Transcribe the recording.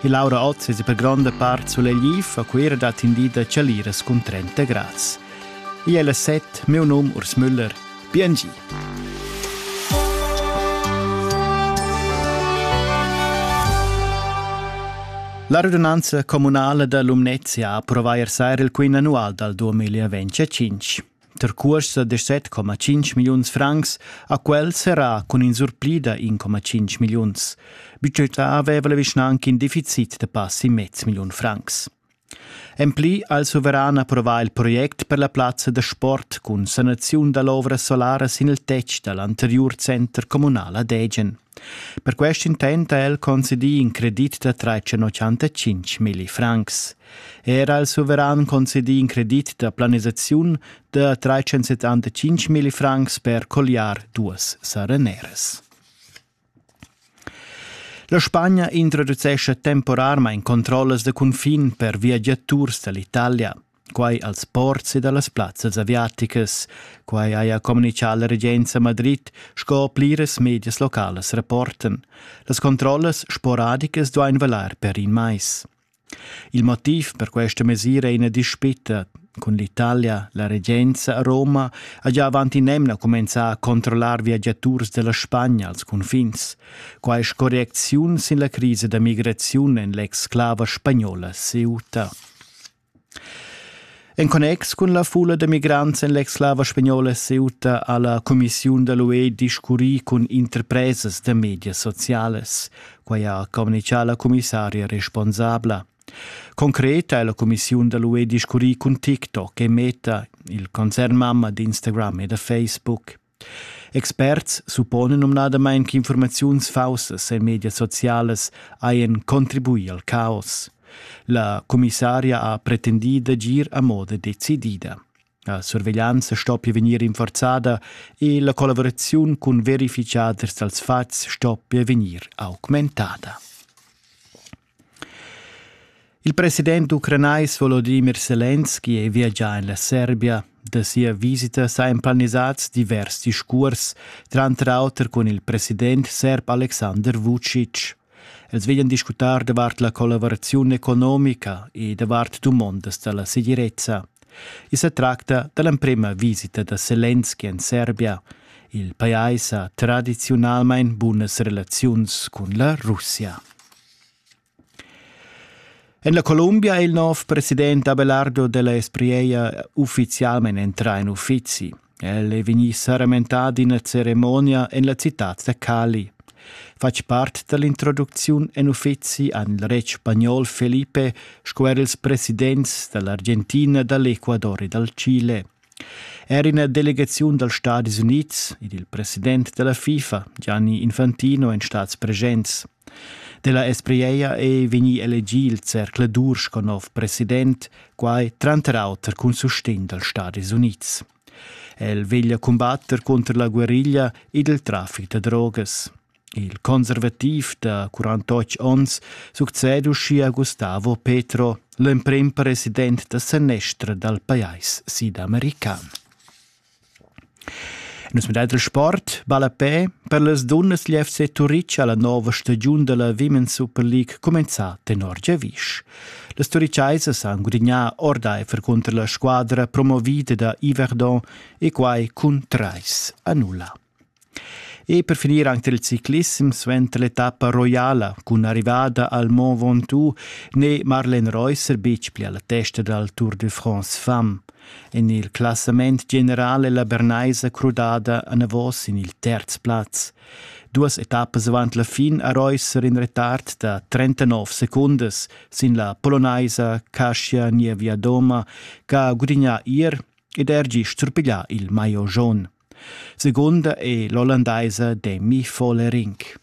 e Laura Ott es per gronda part sulegliv a Cuira dat indi da chaliras cun 30 grads. Ì è la set, meu num Urs Müller, BNG. La radunanza comunala da Lumnezia ha approvà ier sera il quin annual dal 2025. Der cuorsa da 7,5 milliuns francs ha quel serrà cun in surplida 1,5 milliuns. Budgetà aveva la vischnanca in deficit da passi mez milliun francs. En pli ha il suveran approvà il project per la plazza da sport cun sanaziun da l'ovra solara sin il tetg da l'anteriur center communal ad Egen. Per quest intent ha el concedì in credit da tretschenotschantacinc milli francs. Era al suveran concedì in credit da planisaziun da tretschensettantacinc milli francs per colliar duas sereneras. La Spagna introducescha temporarmain controllas da cunfin per viagiaturs da l'Italia. Quai als ports e da las plazzas aviaticas. Quai haja communitgà la regenza Madrid sco pliras medias localas rapportan. Las controllas sporadicas duain valar per in mais. Il motiv per questa mesira è ina dispita. Cun l'Italia, la regenza a Roma ha già avant in'emna cumenzà a controllar viagiaturs della Spagna als confins. Quai correcziun sin la crisa da migraziun en l'exclava spagnola Ceuta. En connex cun la fulla da migrants en l'ex-slava spagnola è seduta alla cumissiun da l'UE discurrì cun interpresas da medias socialas. Quai ha communichà la commissaria responsabla. Concret ha la cumissiun da l'UE discurrì cun TikTok e Meta, il concern mamma d'Instagram e da Facebook. Experts supponan numnadamain ch'infurmaziuns faussas en medias socialas hajan contribuì al caos. La commissaria ha pretendì d'agir a moda decidida. La surveglianza stoppia vegnir rinforzada e la collavuraziun cun verificaders dals fatgs stoppia vegnir augmentada. Il president ucranais Volodimir Selenski è viagià en la Serbia. Da sia visita sajan planisads divers discurs, tranter auter cun il president serb Aleksandar Vucic. Els veglian discutar davart la collaboraziun economica e davart dumondas da la segirezza. I sa tracta da l'emprima visita da Selenski en Serbia. Il pajais ha tradiziunalmain bunas relaziuns cun la Russia. En la Columbia è il nov president Abelardo della Esprieia uffizialment entrà in uffizi. El è vegnì saramentà d'ina ceremonia en la citad da Cali. Fatg part dall'introducziun en uffizi han il retg spagnol Felipe sco er ils presidents dall'Argentina, dall'Ecuador e dal Chile. Er ina delegaziun dals Stati Unids ed il president della FIFA, Gianni Infantino, èn stads presents. Della Espriella ei vegni elegì il zercladur sco nov president, quai tranter auter cun sustegn dals Stadis Unids. El veglia cumbatter cunter la guerriglia ed il traffic da drogas. Il conservativ da 48 onns succede uschia Gustavo Petro, l'emprim president da senestra dal pajais sidamerican. Nus medel dal sport ballapè per las dunnas dil FC Turitg ha la nova stagiun dalla Women's Super League cumenzà tenor giavisch. Las Turiceisas han gudignà ordaifer cunter la squadra promovida da Yverdon e quai cun trais a nulla. E per finir anche il ciclissem suenter l'etappa roiala cun l'arrivada al Mont Ventoux n'è Marlene Reusser betg pli alla testa dal Tour de France Femme. En il classament general è la Bernaisa crudada anavos sin il terz plaz. Duas etappas avant la fin ha Reusser in retard da 39 secundas sin la polonaisa Kasia Nievia-Doma, che ha gudignà ier ed er gist surpiglià il maillot jaun. Segunda è l'ollandaisa Demi Follerinck.